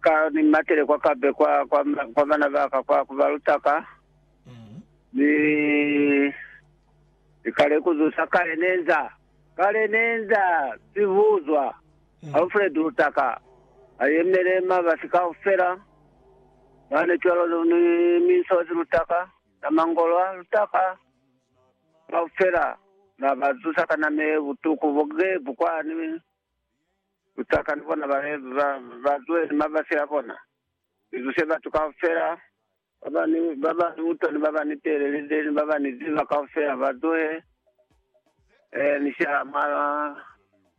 Ka ni matile kwa kape kwa, kwa, kwa bana ba ka, kwa kubaluta ka, ni, ni kale kuzusa kale nenza, kale nenza sibuzwa, Alfred utaka, ayemele mabasi kaufela, bane cwalo lu- ni minsozi lutaka, na mangolwa lutaka, kaufela, na bazusa ka name butuku bogebu kwa, ni, Butaka ni bona ba be ba ba zuwe ni mabasi a bona, ni zuse batu kaufela ba ba ni ba ba ni butwa ni ba ba ni teelelize ni ba ba ni ziba kaufela ba zuhe. Eh, ni sha mwa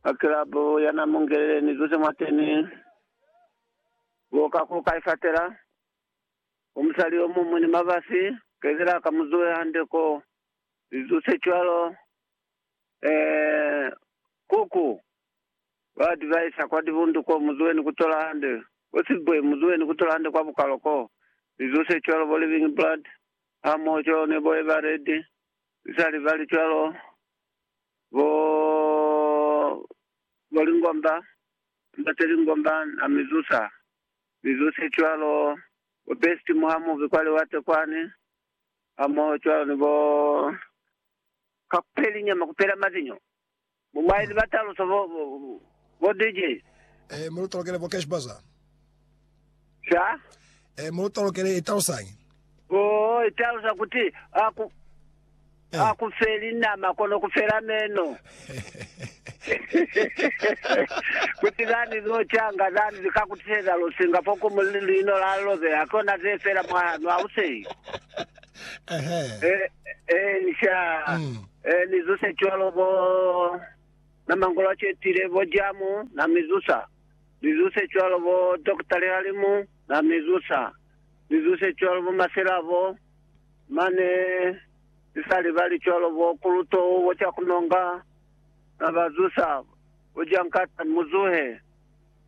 mwa kilabu ya na mu ngelele ni zuse mwateni. Bo ka ku kai fatela, bo musali yo mumwi ni mabasi, kezela ka mu zuwe hande ko, ni zuse cwalo. Eeh kuku ba advisa kwa dibundu ko muzueni kutola hande bo silbwe muzueni kutola hande kwa bukalo ko lizo se cwalo bo living blood ha moho cwalo ne bo eba red lisali bali cwalo bo bo lingomba emba se lingomba na mizusa lizo se cwalo bo best muha muvi kwa liwate kwani ha moho cwalo ni bo ka kupeli nyama kupela mazinyo bo maili ba taluso bo bo DJs. Eh mulu tolokele bo cash bazaar. Sha? Eh mulu tolokele italusañi? Oh italusa kuti aku eh. aku feli nama kono kufela meno. kuti zani zo changa zani zikakutiseza lusinga foko mulino la lobe akona ze fela mwahanu auseyi. Ehe. Eh, eh, ni sha. Mm. Eh, ni zuse cwalo bo na mangolo a cetile bo jamu na mizusa. Ni zuse cwalo bo Dr. Lehalimu na mizusa. Ni zuse cwalo bo maselabo mane ni sa libali cwalo bo kuluto bo cha kunonga na ba zusa bo jankata muzuhe.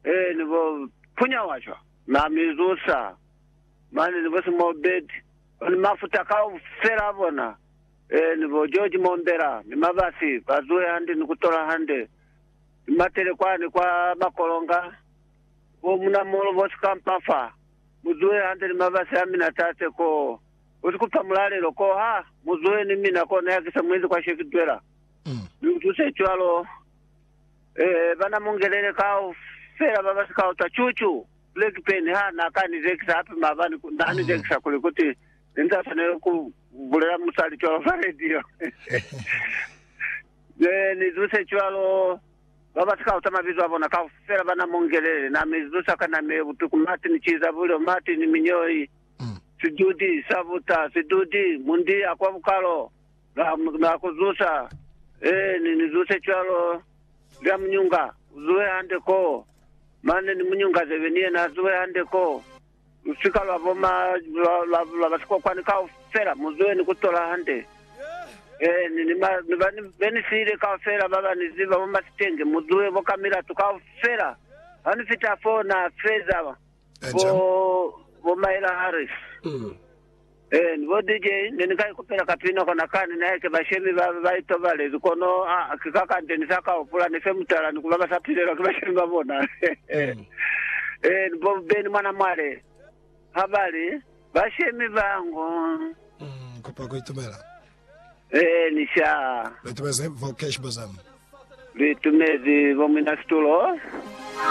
Eh, ni bo punya washwa na mizusa. Mane ni bo Small Bird, ba ni mafuta kaufela a bona, ee, ni bo George Mombela ni Mabasi, ba zuhe hande ni ku tola hande, ni matele kwani kwa Makolonga, bo Munamolo, bo Sikampa fa. Mu zuhe hande ni Mabasi a mina, Tate, koo. U si ku fa mulalelo koo ha? Mu zuhe ni mina koo, ne ha ki sa mu ezi kwa she ki zwela. Mi u tuse cwalo, ee, bana Mungelele kaufela ba ba si ka utwa, Chuchu! Blackburn ha n'a ka ni zekisa hape maabani, n'a ni zekisa kuli kuti ne ni sa swaneli ku bulela musali cwalo fa radio. Ne ni zuse cwalo, ba ba si ka uta mabizo a bona kaufela ba na mu ngelele. N'a mi zusa ka nama ye butuku, Martin Chizabulyo, Martin Minyoi, Sidudi sa buta, Sidudi, Mundi a kwa bukalo, Na, na ku zusa. Ee, ni, ni zuse cwalo. Lya munyunga, uzuhe hande koo. Mane ni munyunga zebe ni yena azuhe hande koo. Lusika lwa bo ma, lwa, lwa, lwa basikokwani kaufela, muzuhe ni kutola hande. Ee, ni, ni ma, ni ba, ni, be ni siile kaufela baba ni ziba bo masitenge, muzuhe bo ka milatu kaufela. Ha ni fita foo, na feza bo, bo Myra Harris. Ee, ni bo DJ ne ni ka ikupela kapina kona kani nae ke bashemi ba ba itobalezi, kono a ki ka kande ni sa ka hupula ne fe mutala ni kuba ba sa pilelwa ki bashemi ba bona. Ee, ni bo Benny mwana mwale ha ba li, Bashemi ba ngo. Ni kupa ku itumela. Ee, ni sha. Lu itumezi, Vocash Bosom. Lu itumezi, Bo Muina Situlo.